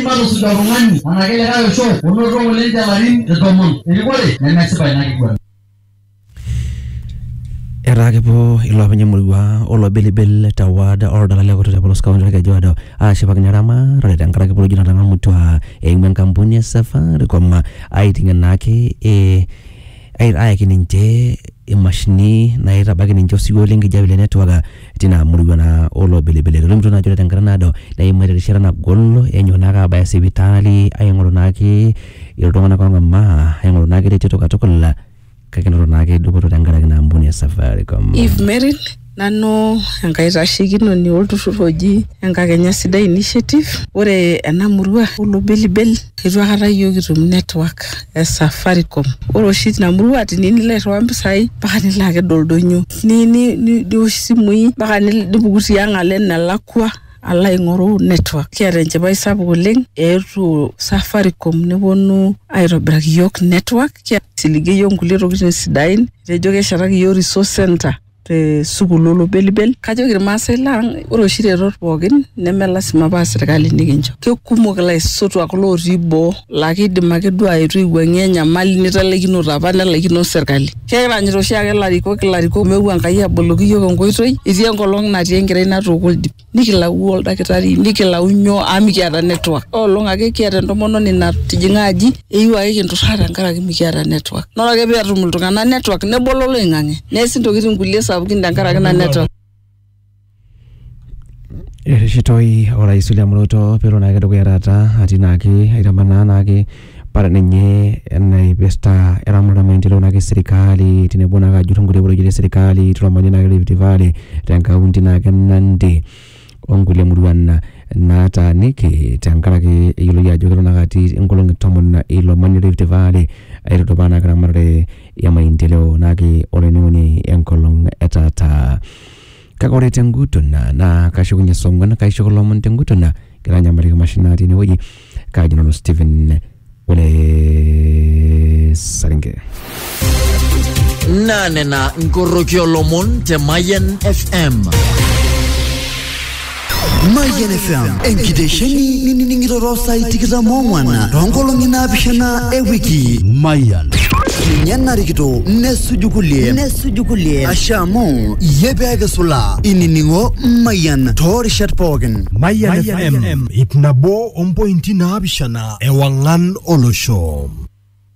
matusuj oltung'ani anake likae osho onoto ng'ole ninche larin tomon erikore nemesipa ina kiguana. Etaa kepuo iloopeny emurua olo Bilbil te ward oldala le Kutuk te polos kaunti Olkejuado aashipakino eramatare tenkaraki polojo natang'amutua eimu enkampuni e Safaricom aiting'ie naake ee ayaki ninche imashinini naitabaiki ninche osiwuo le nkijape le network tina murua naa olobelebele etolimutuo naa ajo ore tenkata naado neimaitie erishata nagol enyok naake abaya sipitali aing'oru naake iltung'anak ong'amaa aing'oru naake reteto katukul kake enoto naake dupoto tenkaraki ina ampuni e Safaricom. Eve Meril, nanu enkaitashekinoni olturrur oji Enkakenya Sidai Initiative. Ore ena murua olobelibel eitu aikata iyiook kitum network. e Safaricom. Ore oshi tina murua tiniyieu nilo airriwaa mpisai mpaka nilo aked oldonyo niosh isimui mpaka nipuku tiang' alo enelakua alo aing'oru network. Kiata enchipai sapuk oleng eetuo Safaricom neponu aitobiraki iyiok network, aisiligie iyiok nkulie tokiting sidain etejo keshetaki iyiok resource centre. te sukuul olobelibel kajoki irmaasai lang ore oshi retot pookin neme lasima paa sirkali nikincho kekumok ilaisotuak lotii boo laa kidim ake duo aetu aiwuang'ie enyamali nitalaikinote apa nelaikino sirkali kekiranyita oshiake ilarikok ilarikok meeu Enkai aboloki iyiok enkoitoi etii enkolong natii enkerai natooko oldip. nikilau oldakitari nikilau nyoo amu mikiata network olong ake kiata entomononi natijing'a aji eyieu ake kinturraa tenkaraki mikiata network naa ore ake peetum iltung'anak network nebolo oloing'ang'e neesi intokitin kulie sapukin tenkaraki ina network. Ereshitoi orais William Ruto peelo naake dukuya taata atii naake aitamanaa naake Ore ninye enaipirta eramatare omaendeleo naake e serkali tenebo naake ajur nkulie porojeiti e serkali tilo manyara naake le Rift Valley te nkaunti naake e Nandi o nkulie muruan nataaniki tenkaraki eyioloi ajo kelo naake atii inkolong'i tomon ilo manyara le Rift Valley aitudupaa naake eramatare e maendeleo naake olainining'oni enkolong' e taata. Kake ore tenguton naa naa kashukunye song'wan kaisho kulo omon tenguton naa kitanyamaliki mashinani natii enewueji kaji nanu Stephen ole Saringe. naa nena nkoroki olomon te Mayian FM. Mayian FM enkitesheni nining'iroro saai tikitam oong'wan toonkolong'i naapishana e wiki. Mayian. Ninye narikito nesuju kulie nesuju kulie ashe amu iyie pee kisula inining'o Mayian toorishat pookin. Mayian FM ip nabo ompointi naapishana ewang'an olosho.